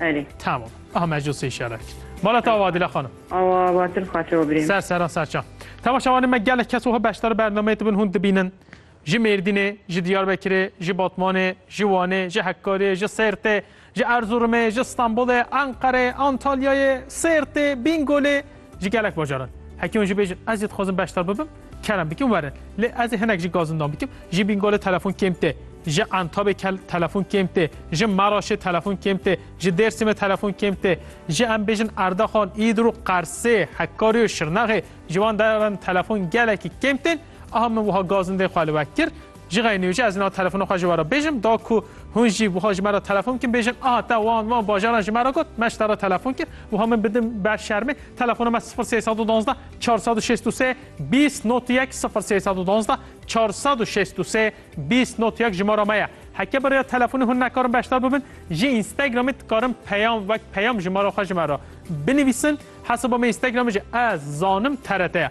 Erê. Tamam. Aha mecû sê şerek. Bala ta vadile xanım. Awa batir xatir o birê. Ser seran serçan. Tava şavanê me gelek kes oha beşdar bernameyê dibin hûn dibînin. Ji Mêrdînê, ji Diyarbekirê, ji Batmanê, ji Wanê, ji Hekkarê, ji Sêrtê, ji Erzurumê, ji Stenbolê, Enqerê, Antalyayê, Sêrtê, Bîngolê, Ji gelek bajaran heke hûn jî bêjin ez jî dixwazim beşdar bibim kerem bikin werin. Lê ez ê hinek jî gazindan bikim. Ji Bîngolê telefon kêm tê, ji Entabê telefon kêm tê, ji Meraşê telefon kêm tê, ji Dêrsimê telefon kêm tê. Ji em bêjin Erdaxan, Îdirû, Qersê, Hekarî û Şirnexê ji wan deran telefon gelekî kêm tên. Aha min wiha gazindê xwe li we kir. Jixê nûcî ez na telefona xwe ji we re bêjim da ku hûn jî wiha ji me re telefon bikin bêjin aha te wan wan bajaran ji me re got me ji te re telefon kir wiha min bidim ber şermê telefona me sifir sê sed û duwazdeh çar sed û şêst û sê bîst not yek sifir sê sed û duwazdeh çar sed û şêst û sê bîst not yek jimara me ye heke bi rêya telefonê hûn nekarin beşdar bibin ji Instagramê dikarin peyam wek peyam jimara xwe ji me re binivîsin hesaba me Instagramê jî ez zanim TRT ye.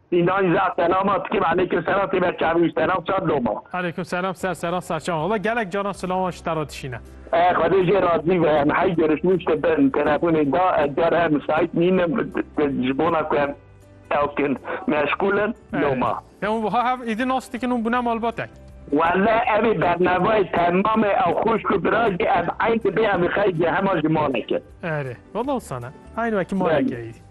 Înan ja selama tikim elêkim selam têbe çavî û selam çar loma. Elêkim selam ser seran ser çavan. Wala gelek caran silaman ji te re dişîne. Eh xwedê jê razî be em hey gerişmî tiştê bin telefonê da ez car her misaît nînim ji bona ku em ew kin meşgûl in loma. Ya hûn wiha hev êdî nas dikin hûn bûne malbatek. Wele evê bernavayê temam e ew xwişk û bira jî ev eyn dibê em xey jê hema ji malê kin. Erê wala wisa ne eyn wekî malê ke êdî.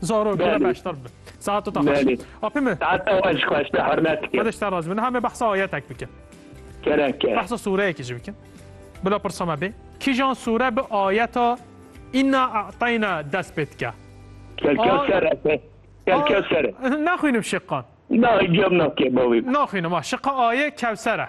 Zaro kira beştar bi. Saat ta xweş. Apê me. Saat ta xweş xweş te hurmet dikim. Xweş te razî bin. Hame behsa ayetek bikin. Kereke. Behsa sureyekî jî bikin. Bila pirsa me bê. Kîjan sure bi ayeta Inna a'tayna dest pê dike. Kelka ser ete. Kelka ser. Naxwînim şiqan. Na cem nakê bavî. Naxwînim a şiqa aye kewser e.